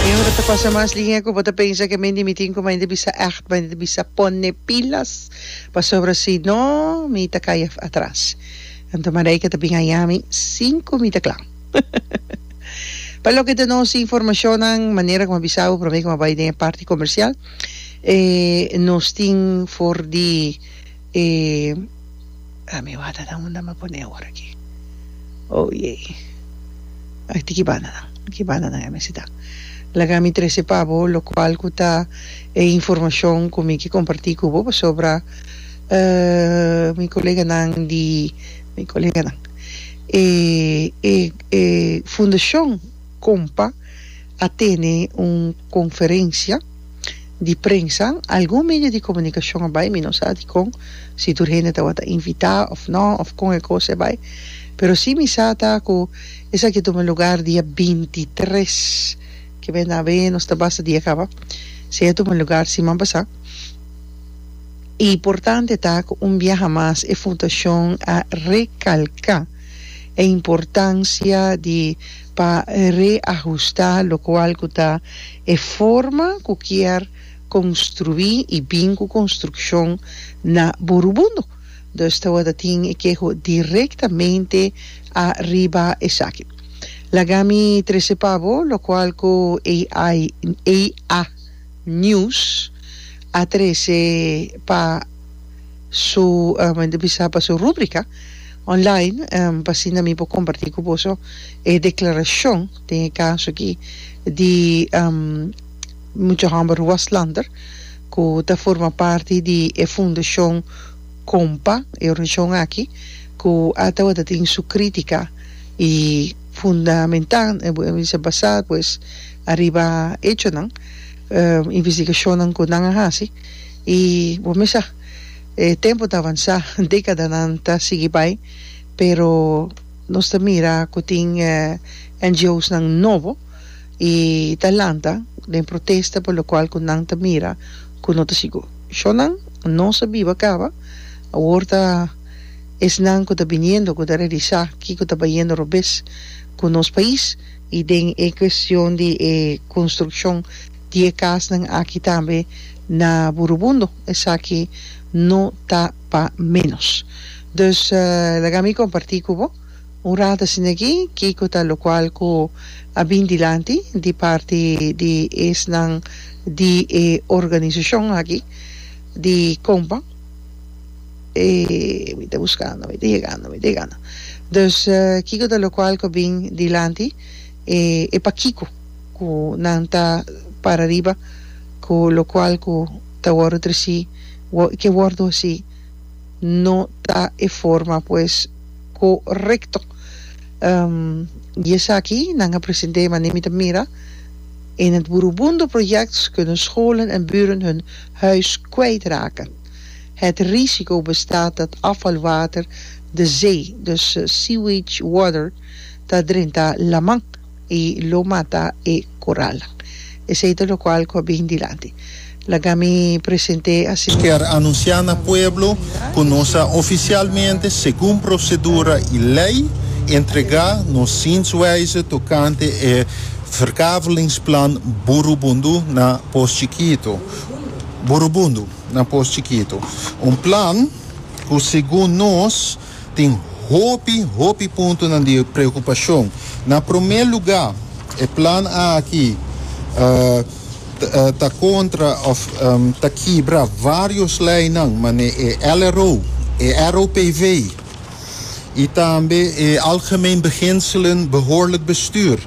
Tin ora ta pasa mas lihé ku bo ta pensa ke men di mi tin ku mainta bisa ègt, mainta bisa pone pilas pasobra si no mi ta kaya atras. Anto Marijke ta bin haña mi sin ku mi ta kla. Pa loke ta nos informashonnan, manera ku a bisa bo promé ku a bai den e parti komersial, nos tin for di E ami wata nan unda mi pone awor aki oh yey aki tin ki banda nan ki banda nan e mi sita laga mi trece pa bo locual cu ta e informacion cu mi ki comparti cu bo pasobra mi colega nan di mi colega nan e e e fundacion compa a tene un conferencia. di prensa, algun medio di komunikashon a bai, mi no sa dikon, si tur hende tabata invitá òf nò, òf kon e kos e bai, pero si mi sa ta ku esaki a tuma lugar dia binti tres, ke men ta haber nos ta basa dia kaba, si a tuma lugar siman pasá. E importante ta ku un biaha mas e fundashon a rekalká e importansia di. pa reahusta lokual ku ta e forma ku kier konstruí i bin ku konstrukshon na Borubondo. Dus tawata tin e keho direktamente ariba esaki. Laga mi trese pa bo lokual ku AI EA News a trese pa. su enta bisa pa su rubrica online pa asina mi por comparti cu boso e declaracion den e caso aki di mucha homber Waslander cu ta forma parti di e fundacion Compa e organisacion aki cu a tabata tin su critica y fundamenta basa pues ariba hechonan investigacionnan cu nan a haci I bo mi sa, e tempu ta avansá, dékadanan ta sigui bai, pero nos ta mira ku tin NGOsnan nobo i ta lanta den protesta por lokual ku nan ta mira ku no ta sigur. Shonnan nos a biba kaba, awor ta esnan ku ta biniendo ku ta realisá kiko ta bayendo robes ku nos pais i den e kuestion di e konstrukshon. Di e kasnan aki tambe na Burubundo, esaki no ta pa menos. Dus laga mi kompartí ku bo un rat asin'akí kiko ta lokual ku a bin dilanti di parti di esnan di e organisashon aki di kompa, mi ta buskando, mi ta yegando, mi ta yegando, dus kiko ta lokual ku a bin dilanti, e pakiko. ku nan ta para riba ku lokual ku ta wòrdu tresí i ke wòrdu hasí no ta e forma pues korekto. Di esaki nan a present'é manera mi ta mira en het beroemde project kunnen scholen en buren hun huis kwijt raken. Het risico bestaat dat afvalwater de zee, dus sewage water, ta drentá laman. i lo mata e koral. Esei ta lokual ku a bin dilanti. Laga mi present'é asin mesmu. Kier anunsiá na pueblo ku nos a ofisialmente, segun prosedura i lei, entregá nos zienswijze tokante e verkavelingsplan Burubundu na Pos Chikito, Burubundu na Pos Chikito, un plan ku segun nos, Tin hopi, hopi puntonan di preocupacion. Na prome luga, e plan aki ta contra of ta kibra varios leinan mane e LRO, e ROPV y tambe e Algemeen Beginselen Behoorlijk Bestuur.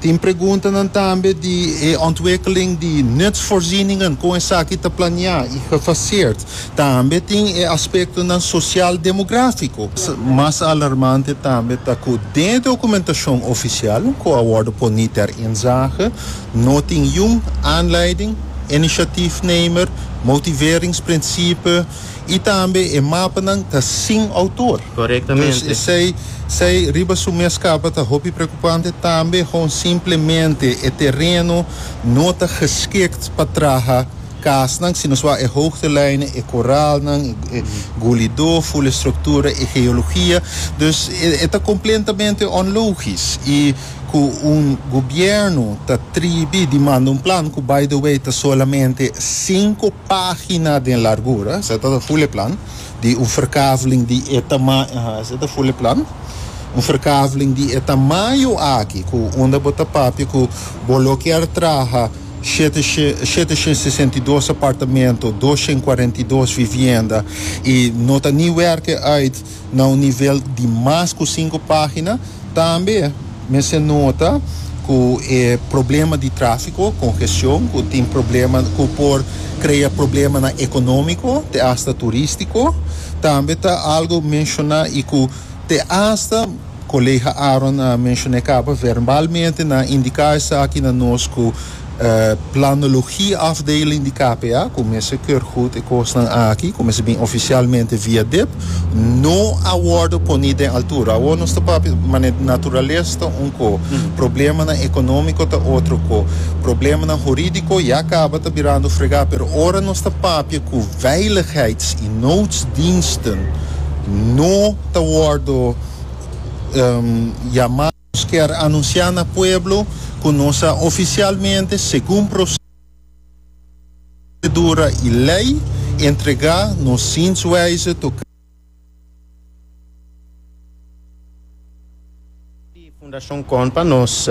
Tin preguntanan tambe di e ontwikkeling di nutsvoorzieningen, kon esaki ta planeá i gefaseerd. Tambe tin e aspektonan sosiaal-demográfiko. Mas alarmante tambe ta ku den e dokumentashon ofisial ku a wòrdu poní ter inzage, no tin yun aanleiding, inisiatifnemer, motiveringsprinsipe, y tambe e mapanan ta sin autor. Corectamente. Dus esey sey riba su mes capa ta hopi preocupante, tambe con simplemente e tereno no ta geschikt pa traha casnan, sino swa e hoogtelijnen, e corralnan, e gulido, full estructura, e geologia. Dus e e ta completamente onlogisch y cu un gobierno ta tribi di manda un plan, cu by the way ta solamente cinco. página den largura esei ta ta Vulleplan di un verkaveling di e tamaño ha esei ta Vulleplan un verkaveling di e tamaño aki ku unda bo ta papia ku bo lo kier traha shete shete shen sesenta i dos apartamento dos shen kuarenta i dos vivienda i no ta ni wèrkè uit na un nivel di mas ku sinku página. Tambe mester nota ku e problema di tráfiko, kongestion, ku tin problema ku por krea problemanan ekonómiko te asta turístiko, tambe ta algu menshoná i ku te asta Kolega Aaron a menshon'é kaba verbalmente, nan indiká esaki na nos ku, Planologia afdeling di KPA ku mester keur gut e kosnan aki ku mester bin ofisialmente via dip no a wordo poni den altura. Awor nos ta papia mane naturalesa ta un ko, problemanan economico ta otro ko, problemanan huridico ya kaba ta birando frega pero ora nos ta papia ku veiligheids i noodsdiensten no ta wordo yama. Nos kier anunsiá na pueblo ku nos a ofisialmente, segun prosedura i lei, entregá nos zienswijze tokante di Fundashon Kon pa nos.